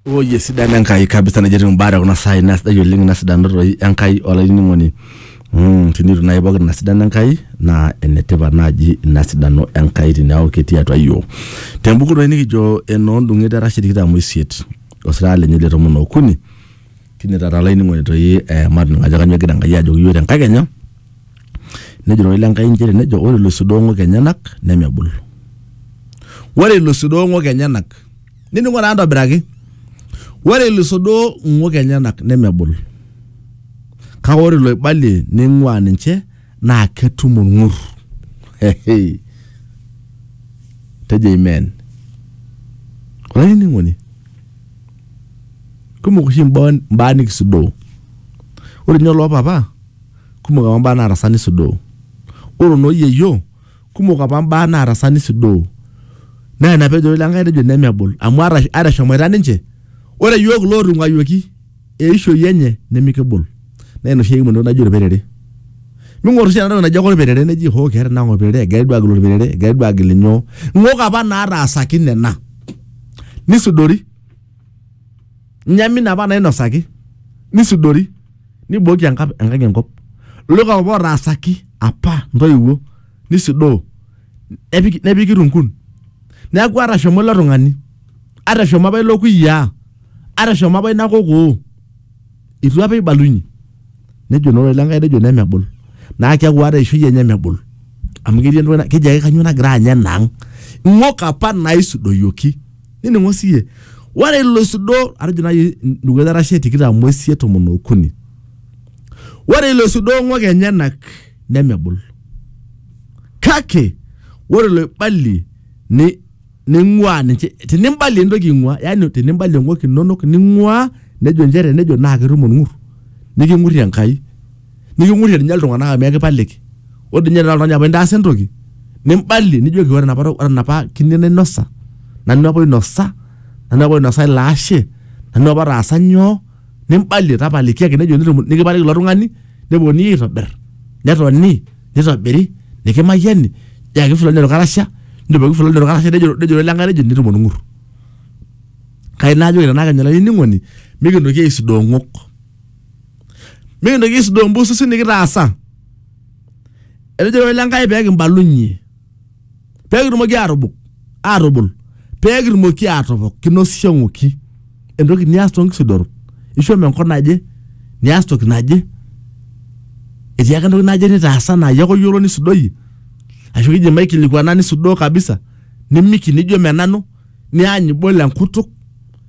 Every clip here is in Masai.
Oye sidano Enkai kabisa nejo etiu imbaa te kuna saai naa sidai oleng ina sidano toi Enkai olainining'oni mm, tinitu naaji pookin ina sidano Enkai naa enetipat naaji ina sidano Enkai tiniaku ketii atua iyiook tembuku toi nikijo enoondung'et erashe tikitam oisiet osirata lenye le tomon okuni tine taata olainining'oni toi eh, matoning'o ajo kanyoo egira Enkai ajoki iyiook tenkakenya Nejo ororei le Nkai inchere nejo ore iloisudong'ok enyenak nemebul. Ore iloisudong'ok enyenak nining'o taa ntobiraki. Ore iloisudong'ok enyenak nemebul. Kake ore iloibalie neing'uaa ninche naa ketum olng'ur. Hehe. Tejo amen. Olainining'oni, kumok oshi imbaa nikisudoo. Ore ninye oloo papa Kumok apa mbaa naatasa nisudoo. Ore noo yieyio, kumok apa mbaa naatasa nisudoo. Naa ina pee ejo ilo Enkai tejo nemebul amu ata eshomoita ninche, ore iyiook lootung'uayioki eishoi enye nemikibul. Naa ina oshi ekimu entoki naji olperere. Ming'or oshi ena toki naji ake olperere neji hoo keeta ina ang olperere, egirai duo aagil olperere, egirai duo aagil inyoo. Ng'ok apa naataasaki nena nisudori. nyamin apa nainosaki nisudori nibooki enkap- enkang enkop loika apa otaasaki apa ntoiwuo nisudoo nepiki, nepiki runkun neeku atashomo ilo tung'ani atashomo apa ilo kuyiaa atashomo apa ina kokoo itu apa ibalunye nejo naa ore lenkai nejo nemebul naa keeku ata eishoi enye mebul amu ketii entoki na- keji ake kanyoo nagira anya enaang ing'ok apa naisudoyioki nining'o siye ore ilo isudo atejo nai dukuya arashe tikitam oisiet tomon okuni ore ilo isudo ong'ok enyenak nemebul kake ore iloibalie ni ning'ua ninche tenimbalie entoki ing'ua yani tenimbalie ng'ok inonok ning'ua nejo inchere nejo naa ketum olng'ur niking'urrie Enkai niking'urrie ninye iltung'anak amu ekipaliki ore dii ninye tenaa oltung'ani apa intaasa entoki nimbalie nijoki ore enapa ore enapa kine nainosa nanu apa oinosa nanu apa oinosa ilo ashe nanu apa otaasa nyoo nimbalie tapalikiaki nejo nitum nikipaliki ilo tung'ani neponunui aitobirr netoni nitobiri nikimayiani niyaki fulani orkarasha nijoki fulani orkarasha nejo nejo lenkae nejo nitum orng'ur kai naajoki tenaa kenyora olainining'oni mikintoki aisudoo ing'ok. mikintoki aisudoo mbususi nikitaasa etejo ilo ile Enkai pee kimbalunye pee kitumoki aatubuk aatubul pee kitumoki aatopok kinosisho ng'oki entoki nias too nkisudorot ishomo enkop naje nias toki naje etii ake entoki naje nitaasa naa iyie ake oyiolo nisudoyie ashu kijo maikilikuana nisudoo kabisa nimiki nijo menanu niany ibol enkutuk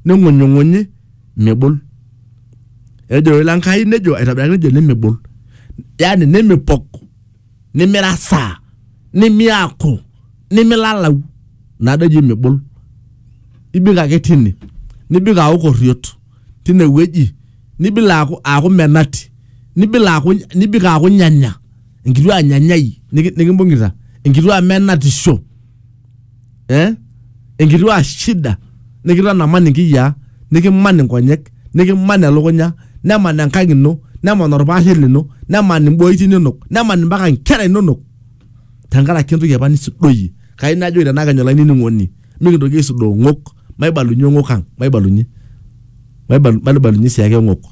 ning'unyung'unyi mibol. ejo ilo Enkai nejo aitobiraki nejo nemebol yani nemipok nimirasaa nimiaku nimilalau nado eji mibol ibik ake tine nibik aaku korriot tine wueji nibik aaku aaku menati nibik aaku nibik aaku nyanya enkituaa nyanyai niki- nikimbung'ita enkituaa menatisho eh? enkituaa shida nikitanamani nkiyiaa nikiman inkonyek nikiman elukunya neman enkang ino neman orpaashe lino neman imboiti inonok neman impaka inkera inonok tenkaraki entoki apa nisudoyie kai najoki tenakenya olainining'oni mikintoki aisudoo ng'ok maibalunye ng'ok ang maibalunye maibalu- maibalunye sii ake ng'ok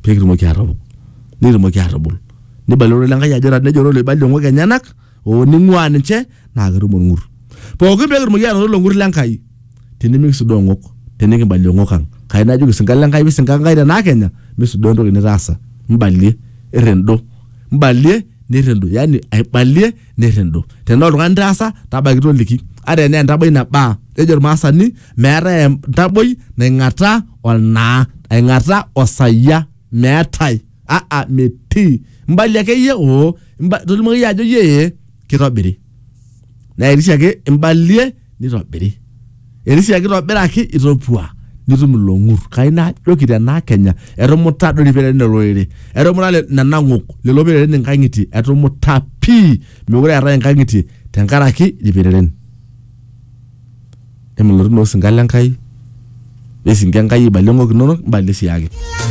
pekitumoki atopok nikitumoki atubul nibalie ororei lenkai ajo ta- nejo ororei oibalie ng'ok enyenak oo ning'uaa ninche naa ketum olng'ur. Pooki pee kitumoki aanoto ilo ng'ur le Nkai tinimikisudoo ng'ok tenikibalie ng'ok ang. Kai najoki isinka le Nkai pisinka Nkai te naa kenya misudoo entoki nitaasa. Mbalie, irrindo. Mbalie nirrindo yaani aibalie nirrindo. Tenaa oltung'ani itaasa tabaiki toliki. Ata enaa entaboi nabaa. Kejo ilmaasani meetae entaboi naing'ataa olnaa. Aing'ataa osayia meetae. aa metii imbali akeyie oo imba- tolimu akeyie ajo yee kitobiri naa etii siake imbalie nitobiri etii siake kitobiraki itopua nitum ilong'ur kai najoki tenaa kenya etumuta doi irpereren olorere etumuta le- nena ng'ok lelo pereren inkang'itie etumuta pii mekure eetae inkang'itie tenkaraki irpereren emilotu naa osinka lenkai wesinka enkai aibalie ng'ok inonok imbalie siake